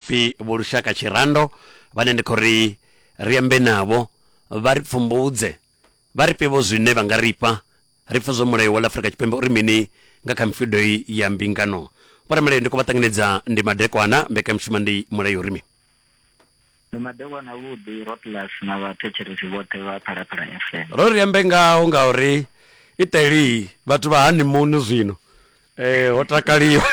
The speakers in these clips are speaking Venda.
Pfi Vho Lushaka Tshirando vhane ndi khou ri ri ambe navho vha ri pfumbudze, vha ri fhe vho zwine vha nga ri fha ri pfe zwo Mulayo wa ḽa Afrika Tshipembe uri mini nga kha mifhido iyi ya mbingano. Vho Ramulayo ndi khou vha ṱanganedza, ndi madekwana, mbekanyamushumo ndi Mulayo uri mi. Ndi madekwana avhuḓi, Rotlas na vhathetshelesi vhoṱhe vha Phalaphala FM. Ro ri ambe ngaho ngauri iṱeli vhathu vha hani muno zwino ee ho takaliwa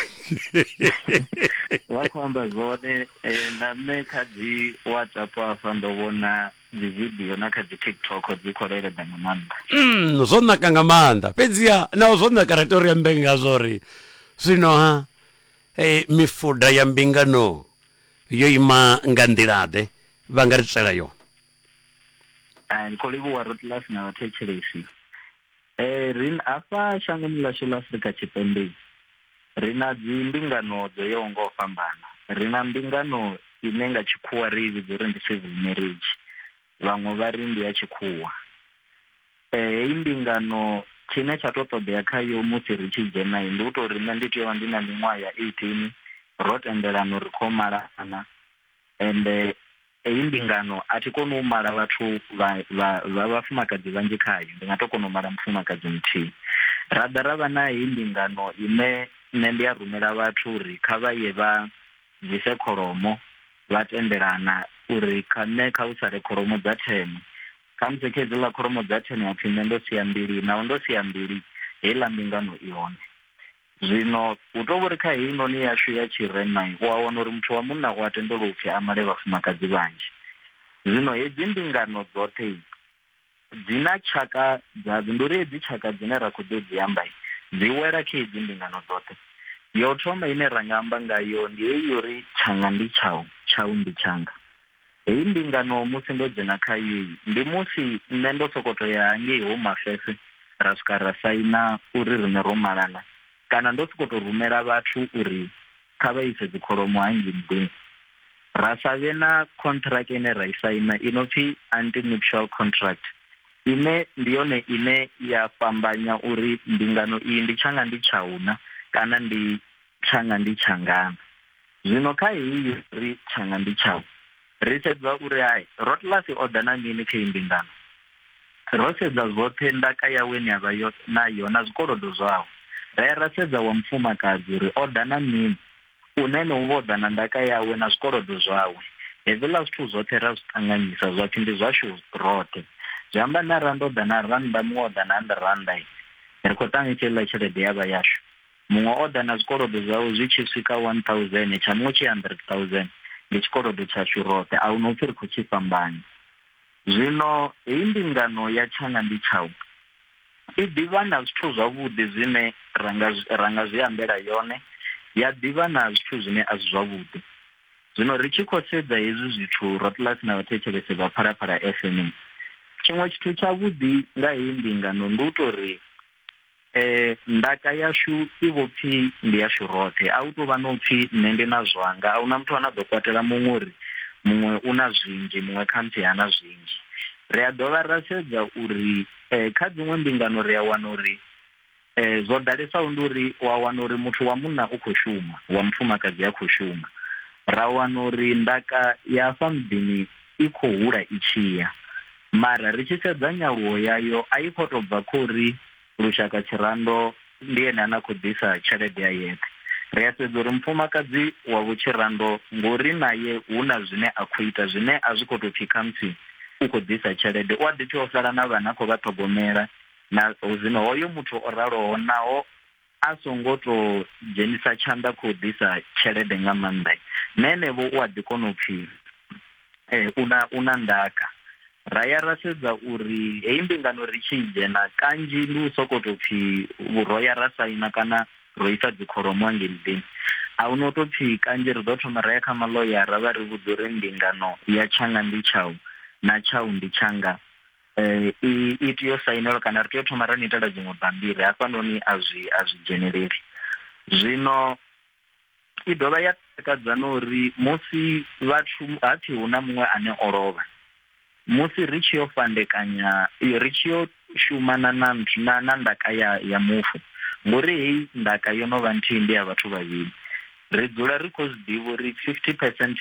vha khou amba zwone um na nṋe kha dzi whatsapp afha ndo vhona dzi video na kha dzi tiktok dzi khou leleda nga maanḓa mm, zwo naka nga maanḓa fhedziha nao zwo naka ri to ri ambe ngazwo ri zwino ha hey, mifuda ya mbingano yo ima nga nḓilaḓe vha nga ri tswela yone ndi khou livhuwa rotlas na vhathetshelesi Ee, ri hafha shangoni ḽashu ḽa Afrika Tshipembe ri na dzi mbingano dzo yaho nga u fhambana. Ri na mbingano ine nga tshikhuwa ri i vhidza uri ndi civil marriage, vhaṅwe vha ri ndi ya tshikhuwa. Eh, heyi mbingano tshine tsha to ṱoḓea khayo musi ri tshi dzhena ndi u tou ri nṋe ndi tea u vha ndi na miṅwaha ya eighteen ro tendelana uri ri khou malana, Ende heyi mbingano a thi koni u mala vhathu vha, vha, vha vhafumakadzi vhanzhi khayo, ndi nga tou kona u mala mufumakadzi muthihi. Ra ḓa ra vha na heyi mbingano ine nṋe ndi a rumela vhathu uri kha vha ye vha bvise kholomo, vha tendelana uri kha nṋe kha hu sale kholomo dza thene. Khamusi kha hedziḽa kholomo dza thene ha pfi nṋe ndo sia mbili, naho ndo sia mbili, heiḽa mbingano i hone. Zwino hu tou vhori kha heinoni yashu ya tshirema u a wana uri muthu wa munna u a tendelwa upfi a male vhafumakadzi vhanzhi. Zwino hedzi mbingano dzoṱhe dzi na tshaka dzadzo, ndi uri hedzi tshaka dzine ra khou ḓo dzi amba dzi wela kha hedzi mbingano dzoṱhe. Yo thoma ine ra nga amba ngayo ndi heyi ya uri tshanga ndi tshau, tshau ndi tshanga. Heyi mbingano musi ndo dzhena kha yeyi ndi musi nṋe ndo sokou tou ya hangei Home Affairs ra swika ra saina uri riṋe ro malana kana ndo sokou tou rumela vhathu uri kha vha ise dzikholomo hangei nḓuni ra sa vhe na contract ine ra i saina i no pfi anti-nuptial contract ine ndi yone ine ya fhambanya uri mbingano iyi ndi tshanga ndi tshauna kana ndi tshanga ndi tshangana zwino kha heyi ri tshanga ndi tshau ri sedza uri hai rotlasi o ḓa na mini kha imbingano ro sedza zwoṱhe ndaka yawe ni avha yo nayo na zwikolodo zwawe ra ya ra sedza wa mufumakadzi uri o ḓa na mini une ne u vho ḓa na ndaka yawe na zwikolodo zwawe hezwiḽa zwithu zwoṱhe ra zwi ṱanganyisa zwa pfhi ndi zwashu roṱhe zwi amba na randa o ḓa na randa muṅwe o ḓa na handiranda ri khou ṱanganyisa iḽa tshelede ya vha yashu muṅwe o ḓa na zwikolodo zwawe zwi tshi swika 1000 tsha muṅwe tshi 100000 ndi tshikolodo tshashu roṱhe a hu no pfi ri khou tshi fhambanya zwino heyi mbingano ya tshanga ndi tshau i ḓivha na zwithu zwavhuḓi zwine ra nga zwi ambela yone ya ḓivha na zwithu zwine a si zwavhuḓi zwino ri tshi khou sedza hezwi zwithu rotlasi na vhathetshelese vha phalaphala fm tshiṅwe tshithu tshavhuḓi nga heyi mbingano ndi u tou ri eh ndaka yashu i vho pfi ndi yashu roṱhe a u tou vha no pfi nṋe ndi na zwanga a huna muthu ane a ḓo kwatela muṅwe uri muṅwe u na zwinzhi muṅwe khamusi ha na zwinzhi ri a dovha ra sedza uri eh, kha dziṅwe mbingano ri a wana uri eh, zwo ḓalesaho ndi uri wa wana uri muthu wa munna u khou shuma wa mufumakadzi a khou shuma ra wana uri ndaka ya afha muḓini i khou hula i tshiya Mara ri tshi sedza nyaluwo yayo a i khou tou bva kha uri Lushaka Tshirando ndi ene ane a khou ḓisa tshelede a yeṱhe. Ri a sedza uri mufumakadzi wa Vho Tshirando ngo uri nae hu na zwine a khou ita zwine a zwi khou tou pfi khamusi u khou ḓisa tshelede, u a ḓi tea u sala na vhana a khou vha ṱhogomela na zwino hoyo muthu o raloho naho a songo to dzhenisa tshanḓa khou ḓisa tshelede nga maanḓa na enevho u a ḓi kona u pfhi eh, una una ndaka ra ya ra sedza uri heyi mbingano ri tshi dzhena kanzhi ndi u soko to pfhi ro ya ra saina kana ro isa dzikholomo angei muḓini a hu no to pfhi kanzhi ri ḓo thoma ra ya kha maloyara vha ri vhudza uri mbingano ya tshanga ndi tshau na tshau ndi tshanga Eh, i i tea u sainelwa kana ri tea u thoma ra ni itela dziṅwe bammbiri hafhanoni a zwi a zwi dzheneleli zwino i dovha ya takadza na uri musi vhathu ha pfhi hu na muṅwe ane o lovha musi ri tshi yo fhandekanya i- ri tshi yo shuma na na nthu- na na ndaka ya ya mufu ngori heyi ndaka yo no vha nthihi ndi ya vhathu vhavhili ri dzula ri khou zwi ḓivha uri 50 percent